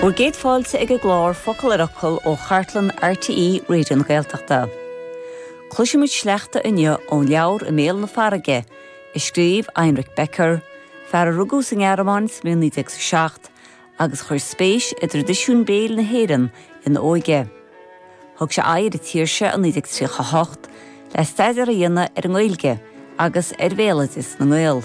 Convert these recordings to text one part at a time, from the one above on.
Bhur gcéad fáilte ag an gclár Focal ar Fhocal ó chartlann RTÉ Raidió na Gaeltachta. Cloisfimid sleachta inniu ón leabhar I mBéal na Farraige, a scríobh Heinrich Becker, fear a rugadh sa nGearmáin sa bhliain 1907 agus a chuir spéis i dtraidisiún béil na hÉireann ina óige. Thug sé aghaidh ar an tír seo i 1938 le staidéar a dhéanamh ar an nGaeilge agus ar bhéaloideas na nGael,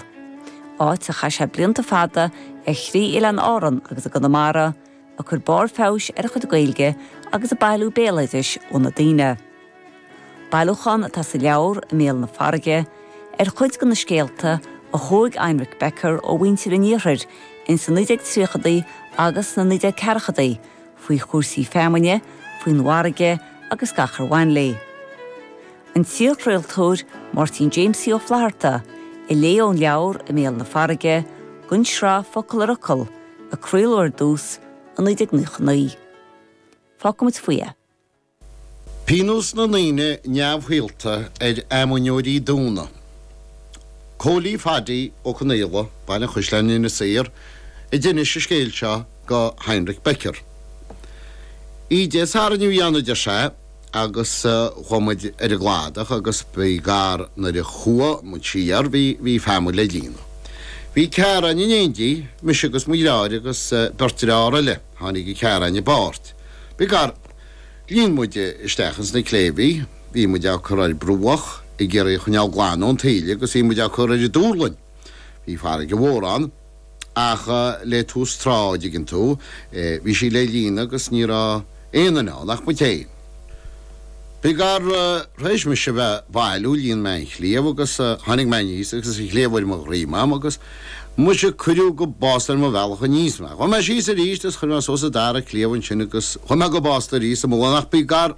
áit ar chaith sé blianta fada ar thrí oileán Árann agus i gConamara, ag cur barr feabhais ar a chuid Gaeilge agus ag bailiú béaloidis ó na daoine. Bailiúchán atá sa leabhar, I mBéal na Farraige, ar chuid de na scéalta a thóg Heinrich Becker ó mhuintir an Iarthair ins na 1930idí agus sna 1940idí, faoi chúrsaí feamainne, faoin bhfarraige agus gach ar bhain léi. An t-iarchraoltóir Máirtín Jamesie Ó Flatharta a léigh ón leabhar I mBéal na Farraige, don tsraith Focal ar Fhocal, a craoladh ar dtús, i 1999. Fágfaimid faoi é. Pionós na ndaoine neamhshaolta ar fheamainneoirí Domhnaigh. Cóilí Phaddy Ó Conaola, Baile an Chaisleáin, Inis Oírr, a d'inis an scéal seo go Heinrich Becker. Oíche Dé Sathairn a bhí ann, a deir sé, agus chuaigh muid ar an gcladach agus by gar nuair a chuaigh muid siar bhí feamainn le líonadh. Bhí ceathrar againn in éindí, mise agus mo dheartháir agus beirt deartháir eile, tháinig an ceathrar againn i bpáirt. By gar. Líon muid isteach ins na cléibhí, bhí muid á cur ar bruach ag iarraidh a choinneáil glan ón taoille agus bhí muid á cur ar an duirling. Bhí farraige mhór ann ach le tús trá, an dtuigeann tú, bhí sí le líonadh agus ní raibh aon duine ann ach muid féin. By gar, tar éis mise a bheith ag bailiú, líon mé an chliabh agus tháinig mé aníos agus an chliabh ar mo dhroim agam agus. Muise, cuireadh go básta ar mo bhealach aníos mé. Chuaigh mé síos aríst is chuir mé suas an dara cliabh ansin agus chuaigh mé go básta aríst sa mullán ach by gar,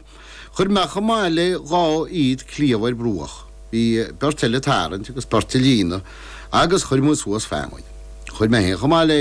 chuir mé chomh maith le dhá fhichid cliabh ar bruach, bhí beirt eile ag tarraingt agus beirt ag líonadh agus chuir muid suas feamainn. Chuir mé fhéin chomh maith le.